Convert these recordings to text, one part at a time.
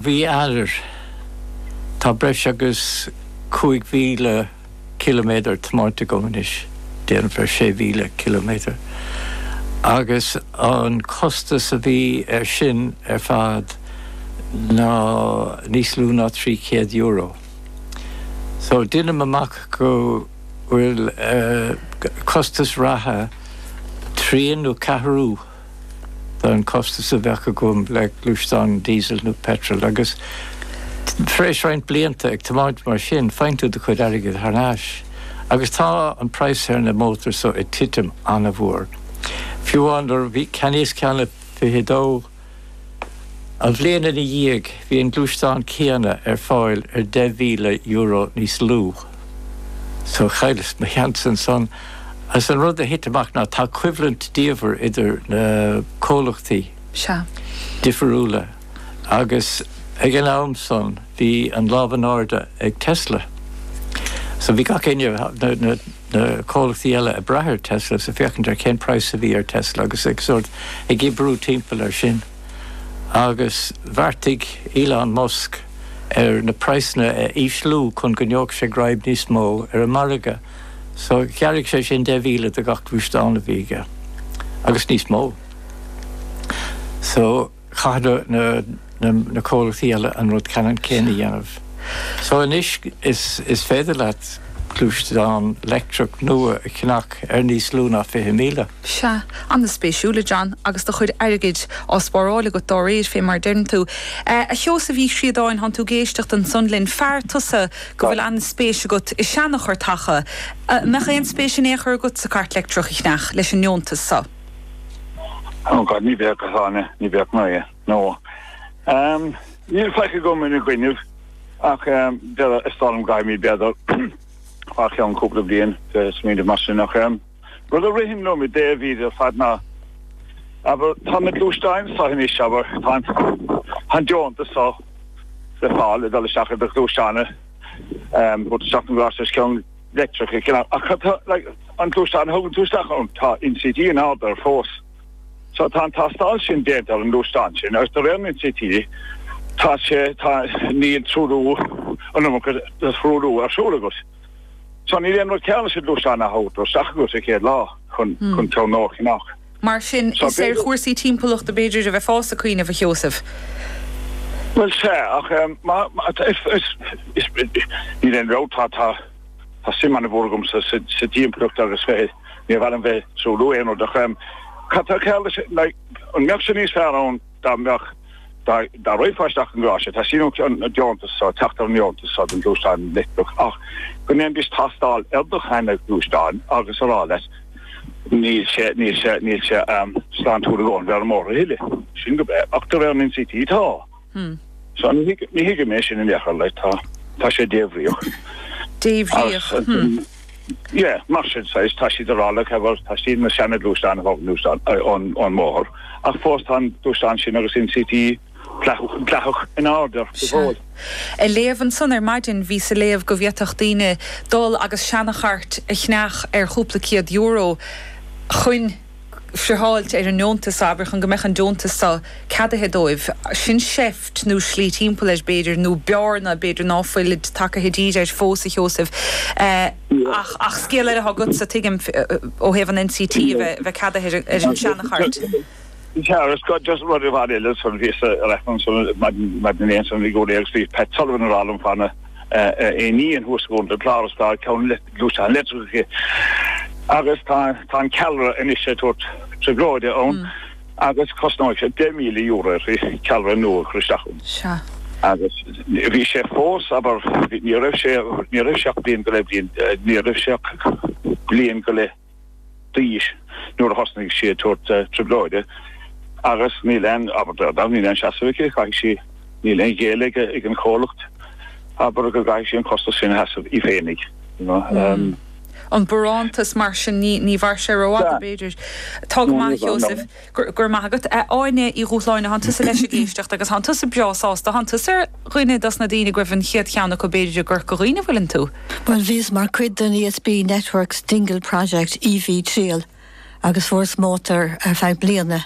Bhí ar. Tá breis agus 5,000 ciliméadar tiomáinte agam anois, déarfainn 6,000 ciliméadar, agus an costas a bhí ar sin ar fad ná níos lú ná €300. So, deinim amach go bhfuil costas reatha trian nó ceathrú. den chostas a bheadh agam le gluaisteán Diesel nó Petrol agus tar éis roinnt blianta ag tiomáint mar sin, faigheann tú do chuid airgid thar n-ais agus tá an praghas ar na mótair so ag titim an-mhór. Fiú amháin nuair a cheannaíos ceann i bhfiche dó, An bhliain ina dhiaidh, bhí an gluaisteán céanna ar fáil ar €10,000 níos lú. So, chailleas mo sheans ansan, agus an rud a thit amach ná tá coimhlint diabhail idir na comhlachtaí difirúla, agus ag an am san, bhí an lámh in airde ag Tesla. So bhí gach éinne, na. na comhlachtaí eile ag brath ar Tesla agus ag féachaint ar cén praghas a bhí ar Tesla agus ag sórt ag oibriú timpeall ar sin agus bheartaigh Elon Musk ar na praghsanna a ísliú chun go ngeobhadh sé greim níos mó ar an margadh. So ghearra sé sin deich mhíle de gach gluaisteán a bhí aige agus níos mó. So. chaith na comhlachtaí eile an rud ceannann céanna a dhéanamh. So anois is féidir leat gluaisteán leictreach nua a cheannach ar níos lú ná 20,000. Sea. Ana-spéisiúil, a John, agus do chuid airgid á spáráil agat dá réir, fé mar a deireann tú. A Sheosaimh Uí Chríodáin, tánn tú ag éisteacht ansan linn. Fear tusa go bhfuil ana-spéis agat i seanachairteacha. An mbeadh aon spéis in aon chor agatsa cairt leictreach a cheannach leis an ndeontas so? Oh God, ní bheadh a Dháithí, ní bheadh anois, no. Ehm, níl faic agam ina gcoinnibh, ach ehm, is dócha go gcaithfimid b'fhéidir, fé cheann cúpla bliain smaoineamh mar sin, ach ehm, rud a ritheann liom i dtaobh é seo ar fad ná, abair, tá na gluaisteáin so anois, abair, tá an, tá an deontas so le fáil ag dul isteach ar do ghluaisteán, ehm, go dtugann tú isteach an gás os cionn, leictreachais, cineál, ach cad tá, like, an gluaisteán a thugann tú isteach ann? Tá NCT in airde fós. So tá an tástáil sin déanta ar an ngluaisteán sin agus de réir an NCT tá sé, tá, níl truailliú an iomarca de thruailliú ar siúl agat. So níl aon rud cearr leis an ngluaisteán a thabhairt isteach agat sa chéad lá chun, chun teannóir cnag. Mar sin, is ar chúrsaí timpeallachta, b'fhéidir, a bheifeá ag cuimhneamh, a Sheosaimh? Bhuel, sea, ach níl aon dabht, tá suim an-mhór agamsa sa dtimpeallacht agus níor mhaith liom bheith ag truailliú aon rud. Ach cad tá cearr leis? An mbeadh sé níos fearr ann? dá mbeadh, dá raghfá isteach i ngaráiste, tá síniú an deontas so, teacht ar an ndeontas so don ghluaisteán leictreach ach go ndéanfaidís tástáil ar do sheana gluaisteáin agus a rá leat ná fuil sé, níl sé, níl sé slán tú a dhul ar an mbóthar a thuilleadh. Sin go breá. Ach de réir an NCT, tá. So ní thuigim é sin in aon chor, like tá, tá sé débhríoch. Débhríoch? Sea, mar sin saghas, tá siad ag rá leat cabhair, tá siad na seana gluaisteán a thógaint ón mbóthar, ach fós tá an gluaisteán sin agus NCT dleathach in airde air. Ag léamh ansan ar maidin, bhíos ag léamh go bhféadfadh daoine dul agus seana chairt a cheannach ar chúpla céad euro chuin. friotháilt ar an ndeontas seo, abair, chun go mbeadh an deontas seo ceadaithe dóibh. Sin seift nó slí timpeall air, b'fhéidir, nó bearna b'fhéidir ná fuil tagtha díreach air fós, a Sheosaimh, ach scéal eile atá agatsa, tuigim, ó thaobh an NCT a bheith ceadaithe ar an seanachairt. Sea, is cuma, just rud amháin eile, bhíos-sa ar aithne anso maidin inné, bhí Pat Sullivan ag rá liom fá na. I ndiaidh an thuaslagáin i bPáras, tá ceann gluaisteán leictreach aici agus tá an ceallra anois ag tabhairt trioblóide ann agus cosnóidh sé €10,000 uirthi ceallra nua a chur isteach ann. Sea. Agus bhí sé fós, abair, ní raibh sé, ní raibh sé ach bliain go leith, ní raibh sé ach bliain go leith, d'aois nuair a thosnaigh sí ag tabhairt trioblóide agus níl aon, abair, níl aon seasamh aici, caithfidh sí, níl aon ghéilleadh ag an chomhlacht, abair, go gcaithfidh sí an costas sin a sheasamh í féinig, you know. an barántas mar sin, ní, ní mhair sé rófhada b'fhéidir. Tá go maith a Sheosaimh. Go raibh maith agat, a Áine Uí Dhubhshláine, tánn tusa leis ag éisteacht agus tánn tusa breá sásta, tánn tusa ar dhuine dos na daoine go raibh an chéad cheann acu b'fhéidir i gCorca Dhuibhne, an bhfuileann tú? Bhuel, bhíos mar cuid den ESB Networks Dingle Project, EV Trial, agus fuaireas mótar ar feadh bliana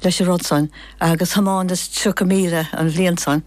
leis an rud san agus thiomáineas 30 míle an bhliain san agus.